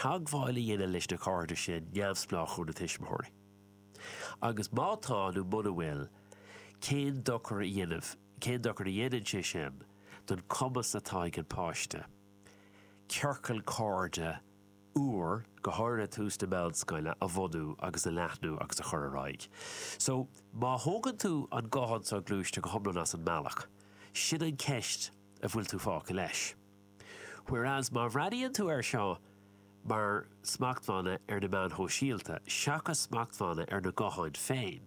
teagmháil a dhéanamh leis na cairde sin neamhspleách ó na tuismitheoirí, agus má tá nó mura bhfuil, cén dochar a dhéanamh, cén dochar a dhéanann sé sin don chumas atá ag an páiste ciorcal cairde úr, go háirithe ag tús na meánscoile, a bhunú agus a leathnú agus a chur ar aghaidh. So, má thógann tú an guthán soghluaiste go hiomlán as an mbealach, sin an cheist a bhfuil tú fágtha leis. Whereas má bhreathnaíonn tú air seo mar smachtbhanna ar na meáin shóisialta seachas smachtbhanna ar na gutháin féin,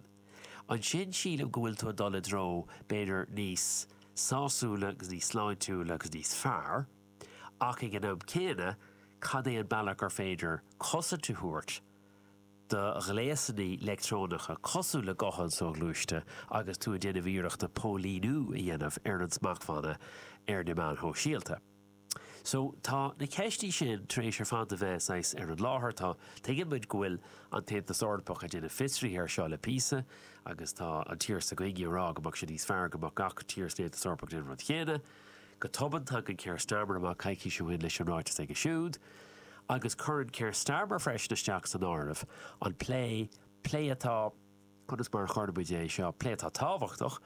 ansin sílim go bhfuil tú ag dul i dtreo b'fhéidir níos sásúla agus níos sláintiúla agus níos fearr, ach ag an am céanna cad é an bealach gur féidir cosaint a thabhairt do ghléasanna leictreonacha cosúil le gutháin soghluaiste agus tú ag déanamh iarracht póilíniú a dhéanamh ar na smachtbhanna ar na meáin shóisialta. So, tá na ceisteanna sin tar éis ar fad a bheith saghas ar an láthair. Tá, tuigeann muid go bhfuil an tAontas Eorpach ag déanamh fiosraithe ar seo le píosa agus tá an tír s'againne ag rá go mbeadh sé níos fearr go mbeadh gach tír san Aontas Eorpach ag déanamh an rud céanna. Go tobann, tagann Keir Starmer amach coicís ó shin leis an ráiteas aige siúd, agus cuireann Keir Starmer freisin isteach san áireamh an plé, plé atá, conas mar a chuirfimid é seo, plé atá tábhachtach,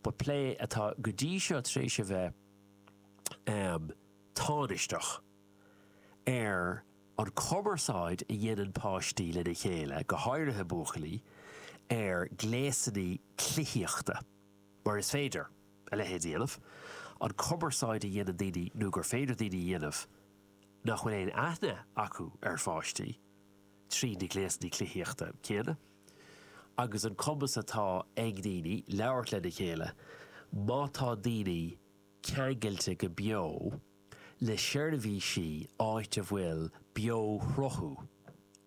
but plé atá go dtí seo tar éis a bheith tánaisteach, ar an chumarsáid a dhéanann páistí lena chéile, go háirithe buachaillí, ar ghléasanna cluichíochta. mar is féidir a leithéid a dhéanamh, an chumarsáid a dhéanann daoine nó gur féidir daoine a dhéanamh nach bhfuil aon aithne acu ar pháistí trí na gléasanna cluichíochta céanna agus an cumas atá ag daoine labhairt lena chéile má tá daoine ceangailte go beo le seirbhísí áit a bhfuil beoshruthú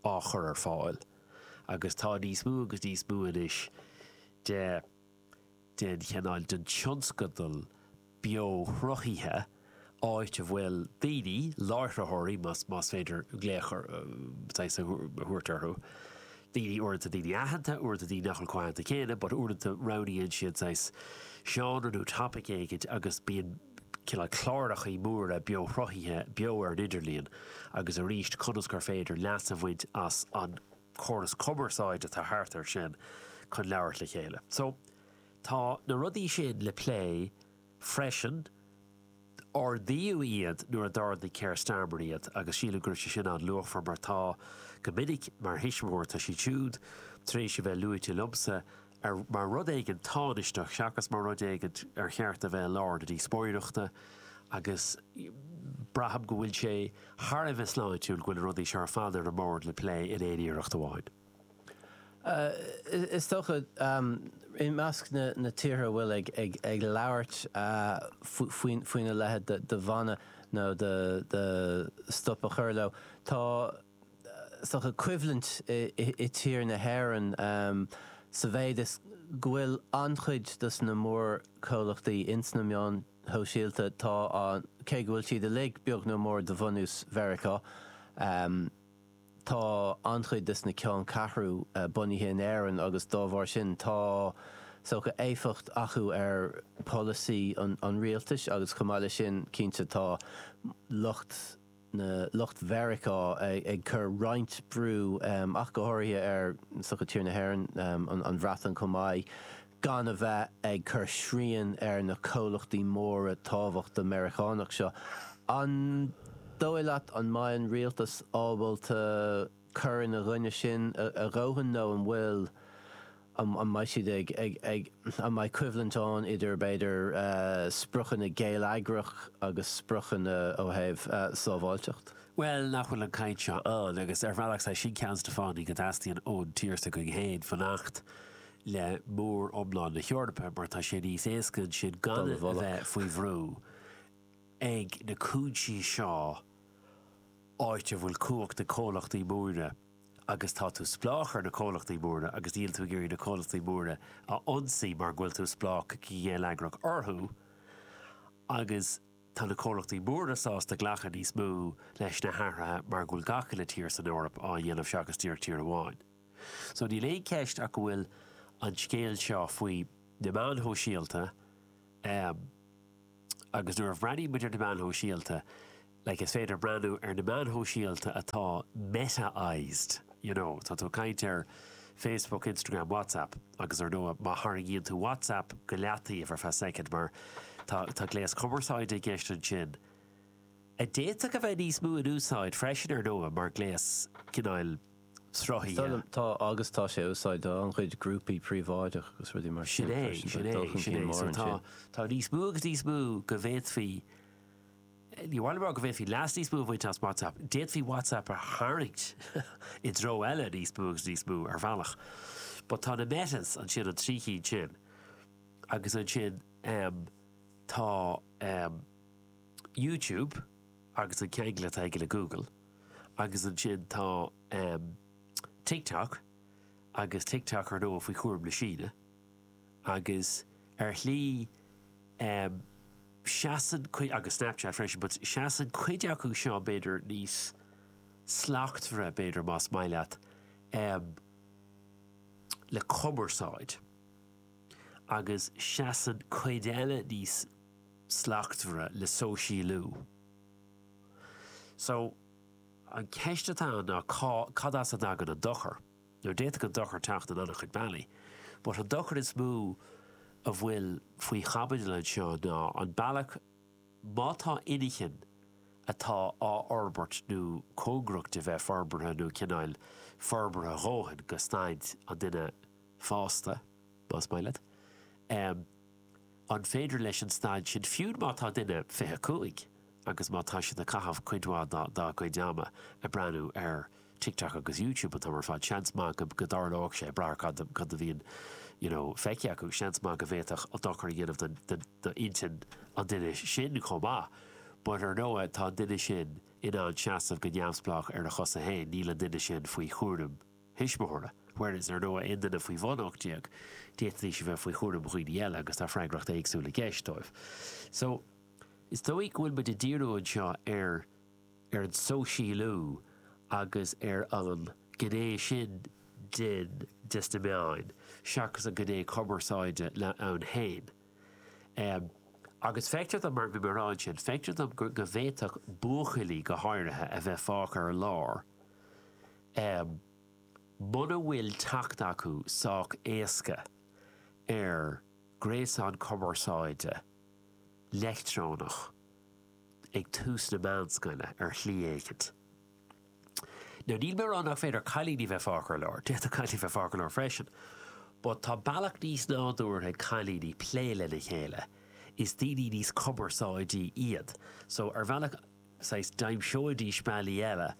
á chur ar fáil agus tá níos mó agus níos mó anois de den chineál den tionscadal beoshruthaithe áit a bhfuil daoine, láithreoirí más féidir glaoch saghas a thabhairt orthu, daoine, uaireanta daoine aitheanta, uaireanta daoine nach bhfuil chomh haitheanta céanna but uaireanta roghnaíonn siad saghas seánra nó topaic éigin agus bíonn cineál clárachaí móra beoshruthaithe beo ar an idirlíon agus arís conas gur féidir leas a bhaint as an córas cumarsáide atá thart air sin chun labhairt le chéile. So, tá na rudaí sin le plé freisin. Ardaíodh iad nuair a d'ardaigh Keir Starmer iad agus sílim go raibh sé sin an-luachmhar mar tá, go minic, mar thuismitheoir, tá siad siúd tar éis a bheith luaite liomsa ar, mar rud éigin tánaisteach seachas mar rud éigin ar cheart a bheith i lár na díospóireachta agus braithim go bhfuil sé thar a bheith sláintiúil go bhfuil na rudaí seo ar fad ar an mbord le plé in aon iarracht amháin. Is dócha, i measc na tíortha a bhfuil ag labhairt faoina leithéid de bhanna nó de de stop a chur leo, tá, is dócha coimhlint i tír na hÉireann sa mhéid is go bhfuil an-chuid dos na mórchomhlachtaí ins na meáin shóisialta, tá an, cé go bhfuil siad uilig beagnach mór de bhunús Mheiriceá, tá an-chuid dos na ceanncheathrú bunaithe in Éirinn agus dá bharr sin tá, is dócha éifeacht acu ar pholasaí an rialtais agus chomh maith leis sin, cinnte, tá lucht. na lucht Mheiriceá ag cur roinnt brú ach go háirithe ar is dócha tír na hÉireann, an Bhreatain chomh maith, gan a bheith ag cur srian ar na comhlachtaí móra tábhachtacha Meiriceánach seo. An dóigh leat an mbeidh an rialtas ábalta. cur ina gcoinne sin a dhóthain nó an bhfuil, an mbeidh siad ag, an mbeidh coimhlint ann idir b'fhéidir spriocanna geilleagrach agus spriocanna ó thaobh sábháilteacht? Bhuel, nach bhfuil an cheann seo ann, agus ar bhealach is é sin ceann dos na fáthanna go dteastaíonn ón tír s'againn féin fanacht le mór iomlán na hEorpa, mar tá sé níos éasca ansin gan a bheith faoi bhrú ag na cúinsí seo. áit a bhfuil cumhacht ag na comhlachtaí móra agus tá tú spleách ar na comhlachtaí móra agus níl tú ag iarraidh na comhlachtaí móra a ionsaí mar go bhfuil tú spleách go geilleagrach orthu agus tá na comhlachtaí móra sásta glacadh níos mó leis na hathruithe mar go bhfuil gach uile tír san Eoraip á dhéanamh seachas díreach tír amháin. So níl aon cheist ach go bhfuil an scéal seo faoi na meáin shóisialta, Agus nuair a bhreathnaímid ar na meáin shóisialta, like is féidir breathnú ar na meáin shóisialta atá ag Meta is, you know, tá tú ag caint ar Facebook, Instagram, WhatsApp agus ar ndóigh má tharraingíonn tú WhatsApp go leataobh ar feadh soicind mar tá tá gléas cumarsáide i gceist ansin a d'fhéadfadh a bheith níos mó in úsáid freisin ar ndóigh mar gléas cineál sruthaithe. Tá agus tá sé á úsáid do an-chuid grúpaí príobháideach agus rudaí mar sin freisin. Tá dul chun cinn mór ansin. Tá níos mó agus níos mó go bhféadfaí, ní amháin rá go bhféadfaí leas níos mó a bhaint as WhatsApp, d'fhéadfaí WhatsApp a tharraingt i dtreo eile níos mó agus níos mó ar bhealach. But tá na Metas ansin, an trí chinn sin agus ansin tá YouTube agus an ceangal atá aige le Google. agus ansin tá TikTok agus TikTok ar ndóigh faoi chúram na Síne agus ar shlí seasann cuid, agus Snapchat freisin, but seasann cuid acu seo b'fhéidir níos slachtmhaire, b'fhéidir, más maith leat, em, le cumarsáid agus seasann cuid eile níos slachtmhaire le sóisialú. So, an cheist atá ann ná cá, cad as a dtagann an dochar? Now, d'fhéadfadh an dochar teacht in an-chuid bealaí, but an dochar is mó a bhfuil faoi chaibidil anseo ná an bealach, má tá inchinn atá á fhorbairt nó cóngarach do bheith forbartha nó cineál forbartha a dhóthain go staid an duine fásta, más maith leat, eh, An féidir leis an staid sin, fiú má tá duine 25 agus má tá siad ag caitheamh cuid mhaith dá gcuid ama ag breathnú ar TikTok agus YouTube an t-am ar fad, seans maith go dtarlóidh sé, ag brath ar cad go díreach a bhíonn you know feicthe acu, seans maith go bhféadfadh sé dochar a dhéanamh d'intinn an duine sin chomh maith. But ar ndóigh tá an duine sin in ann seasamh go neamhspleách ar a chosa féin, níl an duine sin faoi chúram. thuismitheora, whereas ar ndóigh aon duine faoi bhun 18, d'fhéadfaidís a bheith faoi chúram dhaoine eile agus tá freagracht éagsúil i gceist dóibh. So, is dóigh go bhfuil muid ag díriú anseo ar ar an sóisialú agus ar an gné sin den des na meáin seachas an gné cumarsáide ann féin. Em agus feictear dom mar a bhí mé ag rá ansin, feictear dom go go bhféadfadh buachaillí go háirithe a bheith fágtha ar lár, Em. muna bhfuil teacht acu sách éasca ar ghréasán cumarsáide leictreonach ag tús na meánscoile ar shlí éicint. Now níl mé ag rá nach féidir cailíní bheith fágtha ar lár, d'fhéadfadh cailíní bheith fágtha ar lár freisin, but tá bealach níos nádúrtha ag cailíní plé lena chéile, is daoine níos cumarsáidí iad, so ar bhealach, saghas d'aimseoidís bealaí eile.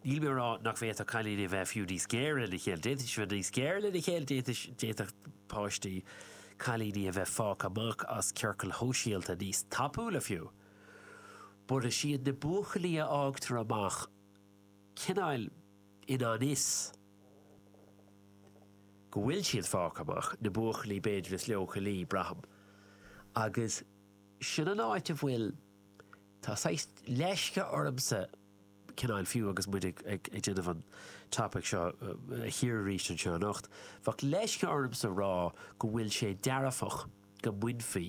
Níl mé a rá nach bhféadfadh cailíní a bheith fiú níos géire lena chéile, d'fhéadfaidís a bheith níos géire lena chéile, d'fhéadfaidís, d'fhéadfadh páistí, cailíní a bheith fágtha amach as ciorcail shóisialta níos tapúla fiú. But is iad na buachaillí a fhágtar amach cineáil i ngan fhios go bhfuil siad fágtha amach, na buachaillí b'fhéidir is leochailí, braithim. Agus sin an áit a bhfuil. Tá saghas leisce ormsa cineál, fiú agus muid ag déanamh an topaic seo a chíoradh arís anseo anocht, bheadh leisce ormsa rá go bhfuil sé dearfach go mbainfí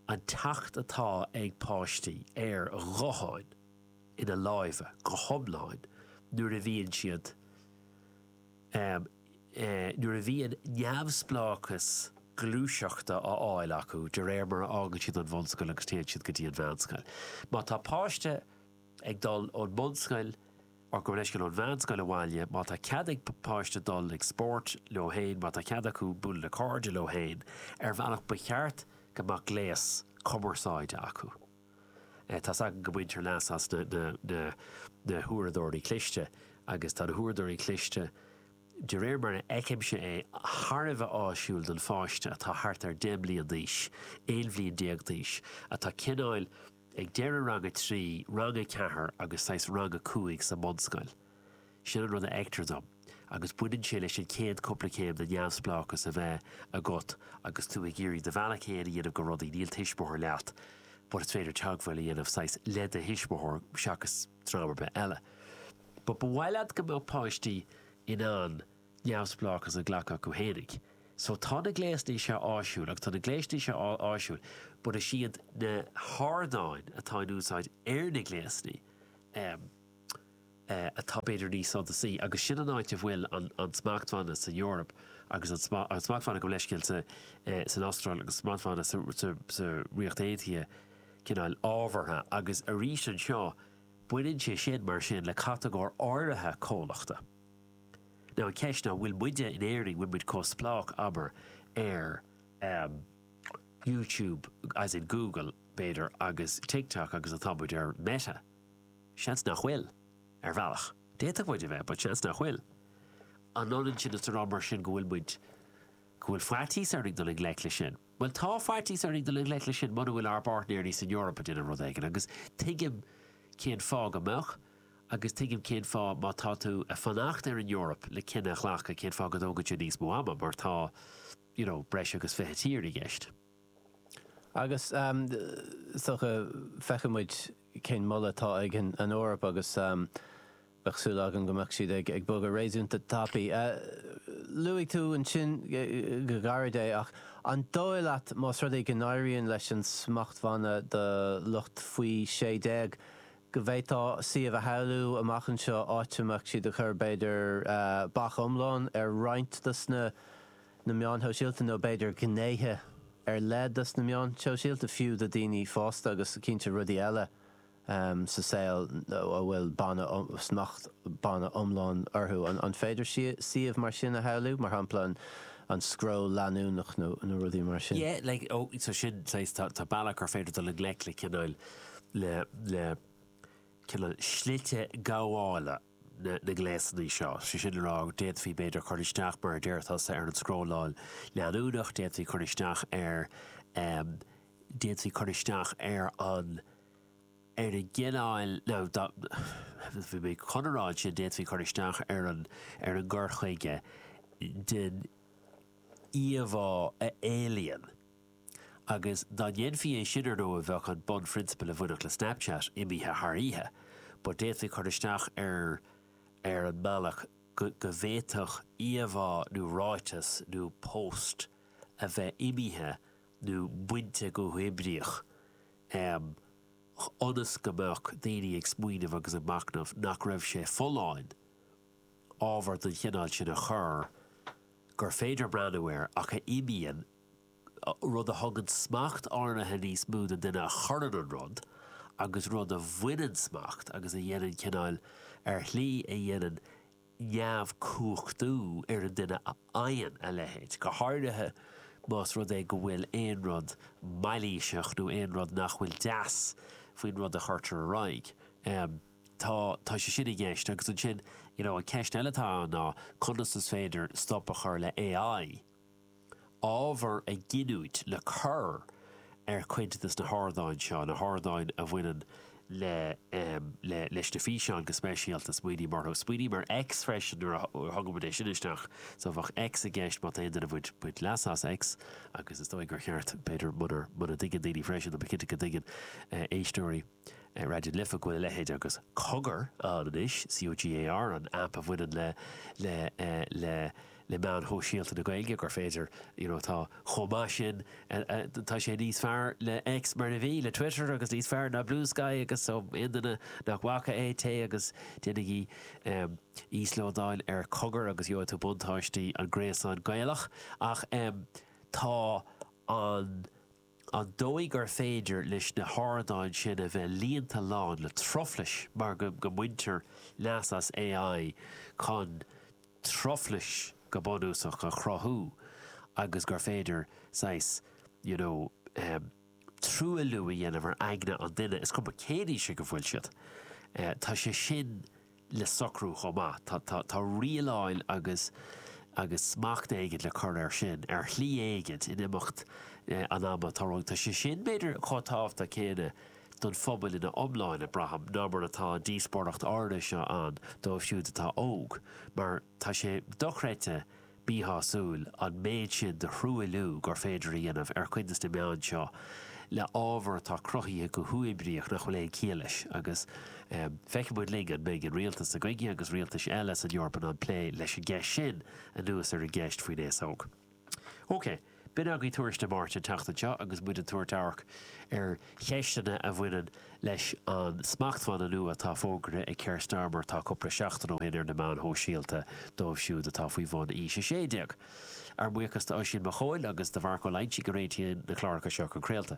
an teacht atá ag páistí ar ghutháin ina lámha go hiomlán nuair a bhíonn siad um nuair a bhíonn neamhspleáchas gluaiseachta á fháil acu de réir mar a fhágann siad an bhunscoil agus téann siad go dtí an mheánscoil. Má tá páiste ag dul ón mbunscoil or gabh mo leithscéal ón mheánscoil abhaile, má tá cead ag páiste dul ag spórt leo féin, má tá cead acu bualadh le cairde leo féin, ar bhealach ba cheart go mbeadh gléas cumarsáide acu. Tá's agam go mbaintear leas as na huaireadóirí cliste agus tá na huaireadóirí cliste, de réir mar a fheicimse é, thar a bheith áisiúil don pháiste atá thart ar 10 mbliain d'aois, 11 bhliain d'aois, atá cineáil ag deireadh rang a trí, rang a ceathair agus saghas rang a cúig sa mbunscoil. Sin an rud a fheictear dom, agus baineann sé leis an chéad cúpla céim de neamhspleáchas a bheith agat agus tú ag iarraidh do bhealach fhéin a dhéanamh go rudaí, níl tuismitheoir leat but is féidir teagmháil a dhéanamh saghas le do thuismitheoir seachas dream ar bith eile. But ba mhaith leat go mbeadh páistí in ann neamhspleáchas a ghlacadh acu fhéinig. So tá na gléasanna seo áisiúil agus tá na gléasanna seo áisiúil but is iad na hardáin atá in úsáid ar na gléasanna, em, atá b'fhéidir níos suntasaí, agus sin an áit a bhfuil an smachtbhanna san Eoraip agus an smachtbhanna gabh mo leithscéal san Astráil agus an smachtbhanna sa Ríocht Aontaithe cineál ábhartha, agus arís anseo baineann sé sin mar sin le catagóir áirithe comhlachta. Now an cheist ná, bhfuil muide in Éirinn, bhfuil muid chomh spleách, abair, ar YouTube, as in Google, b'fhéidir, agus TikTok agus atá muid ar Meta? Seans nach bhfuil. Ar bhealach, d'fhéadfadh muid a bheith, but seans nach bhfuil. An ionann sin is a rá mar sin go bhfuil muid, go bhfuil faitíos orainn dul i ngleic leis sin? Bhuel, tá faitíos orainn dul i ngleic leis sin muna bhfuil ár bpáirtnéirí san Eoraip ag déanamh rud éigin, agus tuigim cén fáth go mbeadh, agus tuigim cén fáth má tá tú ag fanacht ar an Eoraip le cinneadh a ghlacadh, cén fáth go dtógann sé níos mó ama, mar tá, you know, breis agus fiche tír i gceist. Agus, is dócha, feicfidh muid. cén moladh atá ag an Eoraip agus bheadh súil agam go mbeadh siad ag bogadh réasúnta tapaidh. Luaigh tú ansin go gairid é ach an dóigh leat más rud é go n-éiríonn leis an smachtbhanna do lucht faoi sé déag go bhféadfá suíomh a shamhlú amach anseo áit a mbeadh siad ag cur b'fhéidir bac iomlán ar roinnt dos na na meáin shóisialta nó b'fhéidir gnéithe ar leith dos na meáin shóisialta fiú do daoine fásta agus cinnte rudaí eile sa saol a bhfuil ban nó smacht ban iomlán orthu. An féidir suíomh mar sin a shamhlú, mar shampla an scroll leanúnach nó rudaí mar sin? Yeah, like, oh, so sin, so is, tá, tá bealach gur féidir dul i ngleic le cineál, le, le cineál slite gabhála. na ngléasanna seo. Sé sin le rá, d'fhéadfaí b'fhéidir cur isteach, mar a déarfadh tusa, ar an scrolláil leanúnach, d'fhéadfaí cur isteach ar, em, d'fhéadfaí cur isteach ar an, ar an gcineáil, nó bhí mé chun a rá ansin, d'fhéadfaí cur isteach ar an, ar an gcur chuige den íomhá a éilíonn agus dá ndéanfaí é sin, ar ndóigh, bheadh an bunphrionsabal a bhainfeadh le Snapchat imithe thar oíche, but d'fhéadfaí cur isteach ar ar an mbealach go bhféadfadh íomhá nó ráiteas nó post a bheith imithe nó bainte go huathoibríoch, ionas go mbeadh daoine ag smaoineamh agus ag machnamh nach raibh sé folláin ábhar den chineál sin a chur gur féidir breathnú air ach a imíonn rud a thugann smacht áirithe níos mó don duine a chuireann an rud, agus rud a bhaineann smacht agus a dhéanann cineáil, ar shlí a dhéanann neamhchumhachtú ar an duine a fhaigheann a leithéid, go háirithe más rud é go bhfuil aon rud mailíseach nó aon rud nach bhfuil deas faoin rud a chuirtear ar aghaidh. Tá tá sé sin i gceist, agus ansin, you know an cheist eile atá ann ná conas is féidir stop a chur le AI, ábhar a ghiniúint le cur ar chuid de dos na hardáin seo, na hardáin a bhaineann le le leis na físeáin go speisialta. Smaoiním orthu. Smaoiním ar X freisin nuair a thugaimid é sin isteach. So bheadh X i gceist má tá aon duine ag baint leasa as X agus is dóigh gur cheart, b'fhéidir, muna dtuigeann daoine freisin, tá mé cinnte go dtuigeann éisteoirí, ar Raidió na Life go bhfuil a leithéid agus Cogar ann anois, C-o-g-a-r, an aip a bhaineann le le le le meáin shóisialta na Gaeilge, gur féidir you know tá chomh maith sin tá sé níos fearr le X mar a bhí, le Twitter agus níos fearr ná Bluesky agus so aon duine nach bhfaca é, téigh agus déanaigí íoslódáil ar Cogar agus gheobhaidh tú buntáistí an Ghréasáin Ghaelaigh ach tá an an dóigh gur féidir leis na hardáin sin a bheith líonta lán le truflais mar go mbaintear leas as AI chun truflais go bunúsach a chruthú agus gur féidir saghas you know truailliú a dhéanamh ar aigne an duine is cuma cén aois ag a bhfuil siad. Tá sé sin. le socrú chomh maith. Tá rialáil agus agus smacht éigint le cur air sin, ar shlí éigint, in imeacht an ama. Tá rud, tá sé sin, b'fhéidir, chomh tábhachtach céanna don phobal ina iomlán, braithim, ná mar atá an díospóireacht áirithe seo ann dóibh siúd atá óg, mar, Tá sé dochreidte míshásúil an méid sin de thruailliú gur féidir a dhéanamh ar chuid de na meáin seo le ábhar atá cruthaithe go huathoibríoch nach bhfuil aon chiall leis agus feicfidh muid linn an mbeidh an rialtas seo againne agus rialtais eile san Eoraip in ann plé leis an gceist sin anuas ar an gceist faoin aos óg. OK, b'in agaibh Tuairisc Dé Máirt an tseachtain seo agus muid ag tabhairt amharc ar cheisteanna a bhaineann leis an smachtbhanna nua atá fógartha ag Keir Starmer atá cúpla seachtain ó shin ar na meáin shóisialta dóibh siúd atá faoi bhun aois 16. Ár mbuíochas d'Oisín Mac Eoin agus do Mharc Ó Loingsigh a réitíonn na cláracha seo chun craolta.